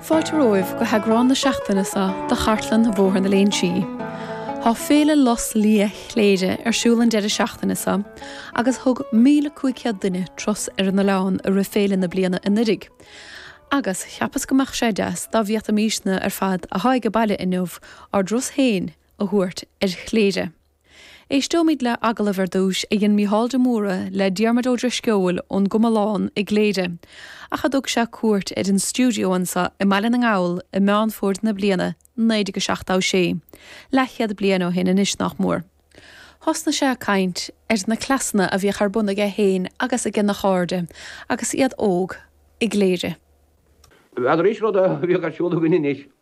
Fáilte romhaibh go heagrán na seachtaine seo de Chartlann Bhóthar na Léinsí. Tá Féile Lus Liath Chléire ar siúl an deireadh seachtaine seo agus thug 1,500 duine turas ar an oileán i rith féile na bliana anuiridh agus cheapas go mbeadh sé deas dá bhféadfaimísne ar fad atá aige baile inniu ár dturas féin a thabhairt ar Chléire. Éisteoimid le agallamh ar dtús a dhein Mícheál de Mórdha le Diarmuid Ó Drisceoil ón gComalán i gCléire, ach a dtug sé cuairt ar an stiúideo anseo i mBaile na nGall i Meán Fómhair na bliana 1976, leathchéad bliain ó shin anois nách mór. Thosnaigh sé ag caint ar na cleasanna a bhíodh ar bun aige féin agus aigena chairde, agus iad óg, i gCléire. Bhí an rís rud a bhíodh ar siúl againn anois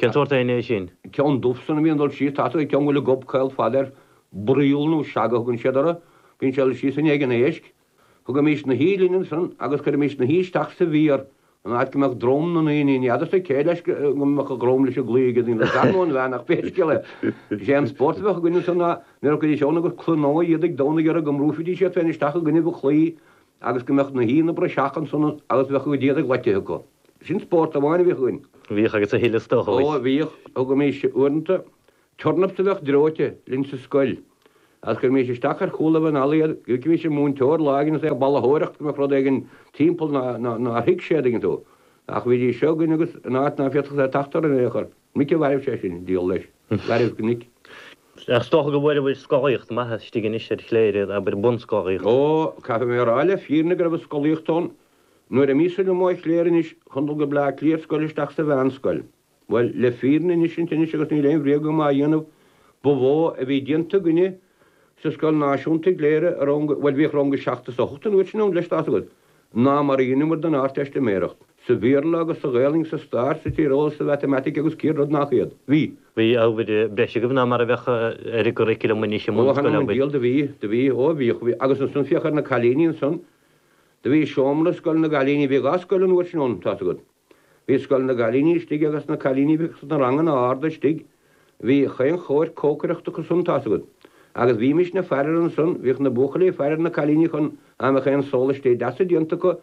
Cén sórt éin é sin? Ceann dubh san a bhíonn dul síos tasalach an ceann go bhfuil an gob caol fada air. Broigheall nó seaga a thugann siad orthu. Bíonn sé dul síos i ndiaidh an éisc. Thugaimís na huibhe linn ansan agus chuirimís na huibhe isteach sa bhféar, an áit go mbeadh drom na n-éiníní fhada sa céidh leis go mbeadh a dhrom leis an gclaí aige d'fhonn go dtarrnódh an bhean ach pé scéal é is é an spórt a bheadh againn ansan ná nuair a chuiridís ann agus cluineadh iad ag domhnadh orthu go mbrúifidís iad féin isteach i gcoinnibh an chlaí agus go mbeadh na huibhe ina bpraiseach ansan agus bheadh a gcuid éadaigh loitithe acu. Sin spórt amháin a bhíodh againn. Bhíodh agus a thuilleadh is dócha. Ó, bhíodh. Thugaimis, uaireanta, turnaps a bheadh dreoite linn sa scoil, agus chuirimís isteach ar chúlaibh an fhalla iad, d'fheicimis an múinteoir lá éigin is é ag balaitheoireacht go mbeadh rud éigin timpeall nár thuig sé, a dtuigeann tú. Ach bhídís seo againn agus in áit ná féadfadh sé teacht orainn in aon chor, minic a mhairbh sé sinn, díol leis. Mhairbh go minic. Ach is dócha go bhfuaireabhair scolaíocht maith istigh anois ar Chléire, abair, bunscolaíocht. Ó, caithfidh mé a rá le fírinne go raibh an scolaíocht ann Nuair a bhíos ullamh i gCléire anois chun dul go Bleá Cliath ar scoil isteach sa mheánscoil. Bhuel, le fírinne insint anois agus níl aon bhréag agam á dhéanamh, ba mhó a bhí déanta againne sa scoil náisiúnta i gCléire i rang a, bhuel, bhíodh rang a seacht is a hocht an uair sin ann, leis, tá's agat, ná mar a dheineamar don Ardteistiméireacht. Sa Bhéarla agus sa Ghaelainn, sa Stair, sa Tíreolas, sa Mhatamaitic agus céad rud nach iad. Bhí. Bhí ábhair breise agaibh ná mar a bheadh ar an gcurriculum anois i mbunscoileanna. Ó, th'anam 'on diabhal, do bhí, do bhí, ó bhíodh, bhí, agus ansan féach ar na cailíní ansan, Do bhí seomra scoile na gcailíní, bhíodh dhá scoil an uair sin ann, tá's agat. Bhí scoil na gcailíní istigh agus na cailíní a bhíodh sna ranganna arda istigh. Bhí chaon chóir cócaireachta acu san, tá's agat. Agus bhímísne ag faire air ansan, bhíodh na buachaillí ag faire ar na cailíní chun dá mbeadh aon sólaistí deasa déanta acu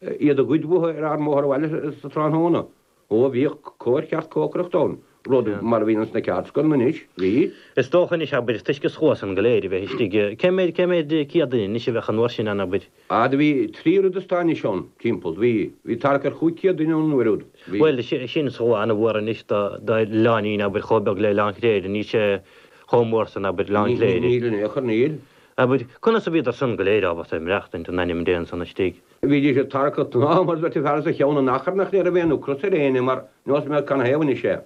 iad a ghoid uathu ar ár mbóthar abhaile sa tráthnóna. Ó bhíodh cóir cheart cócaireachta ann, rud, mar a bhíonn sna ceardscoileanna anois, bhí. Is dócha anois, abair, toisc an scuad san go léir a bheith istigh, cé méid, cé méid céad duine anois a bheadh an uair sin ann, abair? Ah, do bhí trí oiread is tá anois ann, timpeall, do bhí, bhí tarrac ar chúig chéad duine ann an uair úd, bhí. Bhuel, sin slua ana-mhór anois do, do oileáinín, abair, chomh beag le Oileán Chléire, níl sé chomh mór san, abair, Oileán Chléire. Níl in aon chor, níl. Abair, conas a bhíodar san go léir ábalta maireachtaint in ainm Dé ansan istigh? Bhídís ag tarrac an aim as beirt fear as a cheann in achar nach raibh aon ocras ar éinne mar neosfaidh mé canathaobh anois é.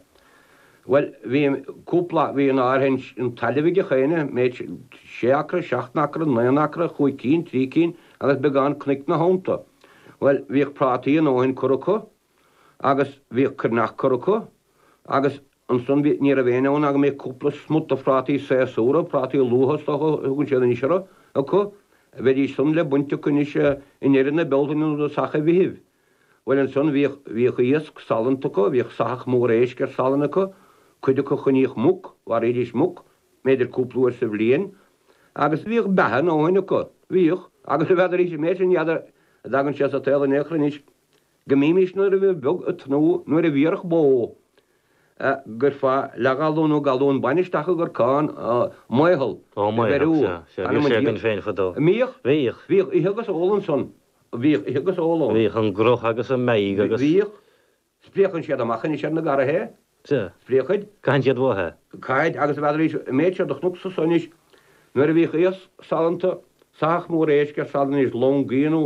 Bhuel, bhí cúpla, bhí an áirithe sin tailimh ag gach éinne, mb'fhéidir sé acra, seacht n-acra, naoi n-acra, chúig cinn, trí cinn agus beagán cnoic ina theannta. Bhuel, bhíodh prátaí a ndóthain curtha acu. agus bhíodh cruithneacht curtha acu, agus ansan bhí, ní raibh éinne ann ná go mbeadh cúpla smut de phrátaí séasúra, prátaí luatha is dócha a thugann siad anois orthu, acu. Bheidís san le baint acu anois i ndeireadh na Bealtaine nó tosach an Mheithimh. Bhuel ansan bhíodh, bhíodh iasc salann acu, bhíodh soitheach mór éisc ar salann acu, cuid acu choinníodh muc, mharaídís muc, mb'fhéidir cúpla uair sa bhliain, agus bhíodh beatha a ndóthain acu, bhíodh, agus a bhfeadraís an méid sin n'fheadar a dtagann sé sa tsaol in aon chor anois. Go mbímis nuair a bhí beag, ag tnúth nuair a bhéarfadh bó, go gcuirfeá leathghalún nó galún bainne isteach i gcorcán, an maothal, a bheiriú, in ainm an Tiarna, a mbíodh, bhíodh ithe agus ól ansan, bhíodh ithe agus ól ann, bhíodh an gruth agus an mheadhg agus, bhíodh, spréachann siad amach anois ar na garraithe é, spréachann, caitheann siad uathu é, caithid, agus a bhfeadraís an méid seo do chonacsa anois nuair a bhíodh iasc salanta, soitheach mór éisc ar salann anois, lón gaoth nó.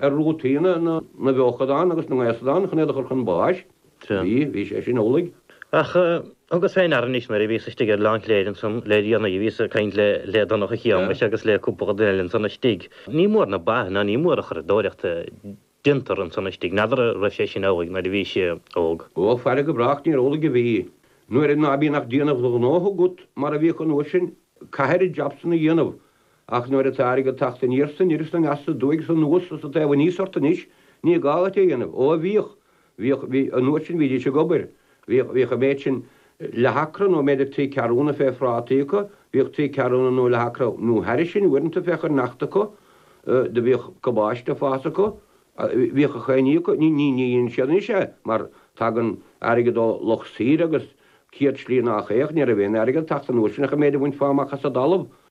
ar rútaí na bhfeochadán agus na ngaosadán chun iad a chur chun báis. Bhí, bhí sé sin amhlaidh. Ach thugas fé ndeara anois nuair a bhíos istigh ar Oileán Chléire ansan le déanaí, bhíos ag caint le, le Donncha Shéamais agus le cúpla duine eile ansan istigh. Ní mór na ba ná ní mór an churadóireacht a déantar ansan istigh. N'fheadar a' raibh sé sin amhlaidh nuair a bhís óg? Ó, faire go brách níorbh amhlaidh a bhí. Nuair ná bíonn ach déanamh do ghnótha agat mar a bhíodh an uair sin, caithfir jab san a dhéanamh, Ach nuair atá airgead ag teacht aniar is anoir is aneas is aduaidh is anuas sa taobh aníos ort anois, ní gá dhuit é a dhéanamh. Ó a bhíodh, bhíodh, bhí, an uair sin bhídís ag obair, bhíodh, bhíodh an méid sin, leathacra nó mb'fhéidir trí ceathrúna fé phrátaí acu, bhíodh trí ceathrúna nó leathacra nó thairis sin uaireanta fé chruithneacht acu, do bhíodh cabáiste ag fás acu, bhíodh gach aon ní acu, ní, ní, ní dhéanann siad anois é mar tagann airgead ó lucht saoire agus céad slí nách é, ach, ní raibh aon airgead ag teacht an uair sin ach an méid a bhainfeá amach as an dtalamh.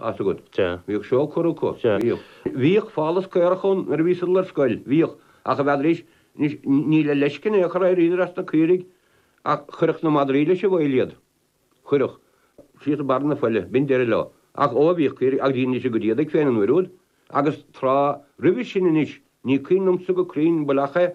as agat. Sea. Bhíodh seó curtha acu. Sea. Bhíodh. Bhíodh fáltas caorach ann nuair a bhíos-sa ag dul ar scoil. Bhíodh. Ach a bhfeadraís anois níl le feiscint aon chaora, d'éiríodar as na caoirigh ach chuirfeadh na madraí leis an bhfaill iad. Chuirfeadh. Síos de bharr na faille. B'in deireadh leo. Ach ó, bhíodh caoirigh agus iad níos agad iad ag féin an uair úd agus tráth roimhe sin anois. Ní cuimhin liomsa go cruinn an bhfuil ach é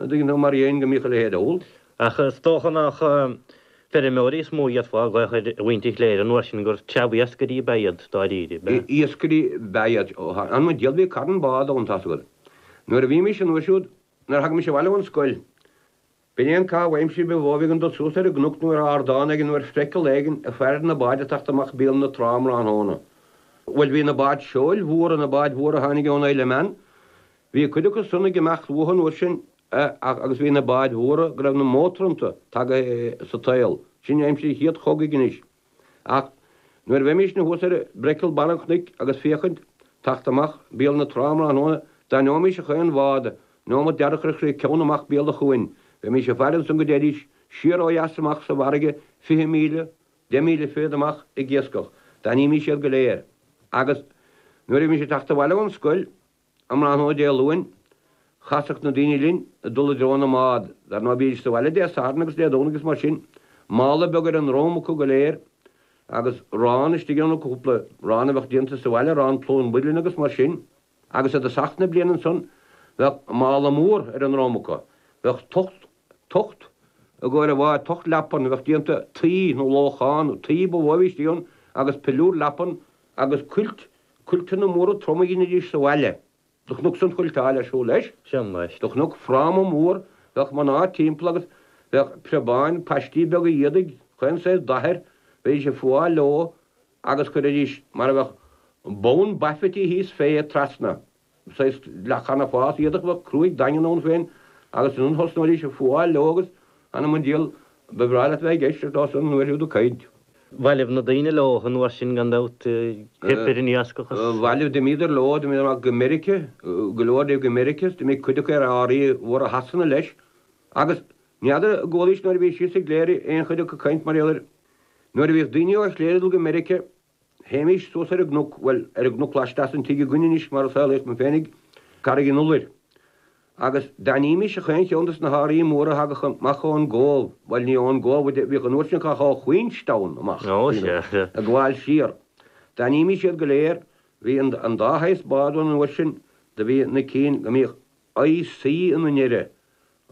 Ní dóigh liom, mar dhéin, go mbíodh a leithéid ann. Ach is dócha nach feirmeoirí is mó a fhéadfá a ghlaoch ar mhuintir Chléire, an uair sin, gur treabhiascairí ab ea iad dáiríre. B'ea. Iascairí ab ea iad, ó tharla an díol bhí carn bád ann, tá's agat. Nuair a bhí mise an uair siúd, nuair a thagaimis abhaile ón scoil, b'in é an caitheamh aimsire ba mhó a bhí againn dul suas ar an gcnoc nó ar ardán éigin nó ar phriacail éigin ag faire na báid ag teacht amach béal na trá um thráthnóna. Bhuel, bhí na báid seoil mhóra, na báid mhóra a tháinig ón Isle of Man, Bhí cuid acu san ag imeacht uathu an uair sin, ach, agus bhí na báid mhóra go raibh na mótair iontu tagaithe sa tsaol, sin aimsir an Chéad Chogaidh anois. Ach nuair a bheimísne thuas ar Brecel Bharr an Chnoic agus féachaint, teacht amach béal na trá um thráthnóna, d'aithneoimís a chaon bhád, neomat dearg ar chrith ceann amach béal an chuain. Bheimís ag faire ansan go dtéidís siar ó dheas amach sa bhfarraige fiche míle, deich míle fichead amach ag iascach. D'aithnímís iad go léir. Agus nuair a bhímís ag teacht abhaile ón scoil, Um thráthnóna Dé Luain, chasadh na daoine linn ag dul i dtreo na mbád. Dar ndóigh, bhídís sa bhaile Dé Sathairn agus Dé Domhnaigh is mar sin, mála beag ar a ndrom acu go léir, agus arán istigh ann acu, cúpla arán a bheadh déanta sa bhaile, arán plúr an mhuilinn agus mar sin. Agus i dtosach na bliana ansan, bheadh mála mór ar a ndrom acu. Bheadh tocht, tocht i gcomhair an bháid, tocht leapan a bheadh déanta tuí nó lóchán, tuí ba mhó a bhí istigh ann, agus piliúr leapan agus cuilt Cuilteanna móra troma a dheinidís sa bhaile. Do chnuc san cuilteáil ar siúl leis. Do chnuc fráma mór, bheadh mná timpeall agus bheadh preabáin, paistí beaga éadaigh, chaon saghas dath air, bheidís ag fuáil leo agus chuiridís mar a bheadh bonn baifití thíos fé, trasna. saghas leathchanabhás, éadach cruaidh daingean ann féin agus ansan thosnóidís ag fuáil leo agus anam an diabhail ba bhreá leat a bheith ag éisteacht leosan an uair siúd ag caint. Bhailigh na daoine leo an uair sin gan dabht, theip ar an iascach is. bhailigh d'imíodar leo, d'imíodar amach go Meiriceá, go leor díobh go Meiriceá is d'imigh cuid acu ar árthaí móra Shasana leis agus n'fheadar an gcualaís nuair a bhís thíos i gCléire aon chuid acu ag caint mar gheall air nuair a bhíodh daoine ó Chléire ag dul go Meiriceá, Théimís suas ar an gcnoc, bhuel, ar an gcnoc laisteas den tigh againn anois mar a saolaíodh mé féinig, Carraig an Iolair. Agus d'aithnímís a chaon cheann des na hárthaí móra a thagadh amach ó'n gCóbh, bhuel ní ó'n gCóbh a bhíodh an uair sin ach ó Queenstown amach, ag gabháil siar. D'aithnímís iad go léir. Bhí an dá shaghas bád ann an uair sin. Do bhí na cinn go mbíodh. IC ina ndeireadh,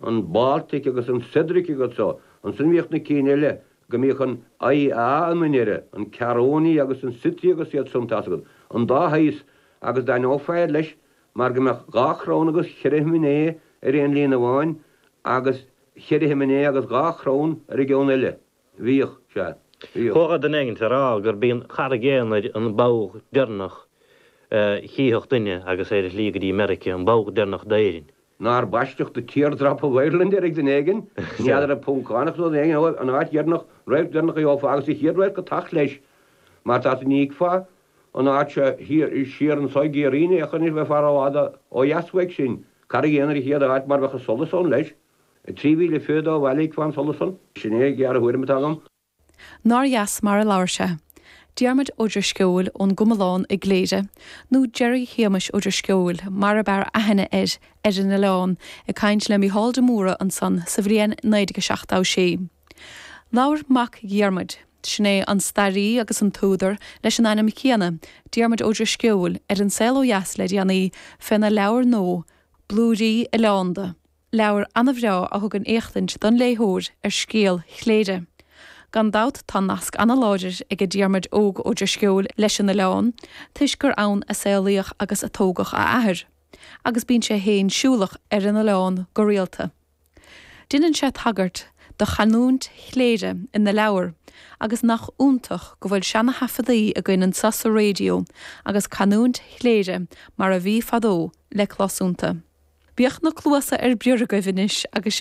an Baltic agus an Cedric agus so, ansin bhíodh na cinn eile go mbíodh an IA ina ndeireadh, an Caronia agus an Scythia agus iad san, tá's agat, an dá shaghas, agus d'aithneofá iad leis mar go mbeadh dhá chrann agus cheithre shiminé ar aon líne amháin agus cheithre shiminé agus dhá chrann ar an gceann eile. Bhíodh sé. Bhíodh. Thógfadh duine éigin á rá gurb í an Charraig Aonair an ball deireanach a chífeadh duine agus é ar a shlí go dtí Meiricea, an ball deireanach d'Éirinn. Nár baisteadh The Tear Drop of Ireland air ag duine éigin? N'fheadar, an Poncánach nó duine éigin eile, an áit dheireanach, radharc deireanach a gheofá agus an chéad radharc ag teacht leis. Mar tá tú, ní fheicfeá an áit seo thiar, siar anseo i gCiarraí, ní fheicfeá anois bheifeá rófhada ó dheas uaidh sin. Carraig Aonair an chéad áit mar bheadh an solas ann leis. 3022 Bhailigh fán solas san, sin é an ghéarthuairim atá agam. Nár dheas mar a labhair sé? Diarmuid Ó Drisceoil ón gComalán i gCléire, nó Gerry Shéamais Ó Drisceoil mar ab fhearr aithne air, ar an oileán, ag caint le Mícheál de Mórdha ansan sa bhliain 1976. Labhair mac Dhiarmuid, sin é an staraí agus an t-údar leis an ainm chéanna, Diarmuid Ó Drisceoil, ar An Saol Ó Dheas le déanaí, féna leabhar nua, Blúirí Oileánda. Leabhar an-bhreá a thugann éachtaint don léitheoir ar scéal Chléire. Gan dabht tá nasc an-láidir aige Diarmaid Óg Ó Drisceoil leis an oileán toisc gur ann a saolaíodh agus a tógadh a athair, agus bíonn sé féin siúlach ar an oileán go rialta. Deineann sé tagairt do chanúint Chléire ina leabhar agus nach iontach go bhfuil seana-thaifeadaí againn anso sa Raidió agus canúint Chléire mar a bhí fadó, le clos iontu. Bíodh na cluasa ar bior agaibh anois agus sibh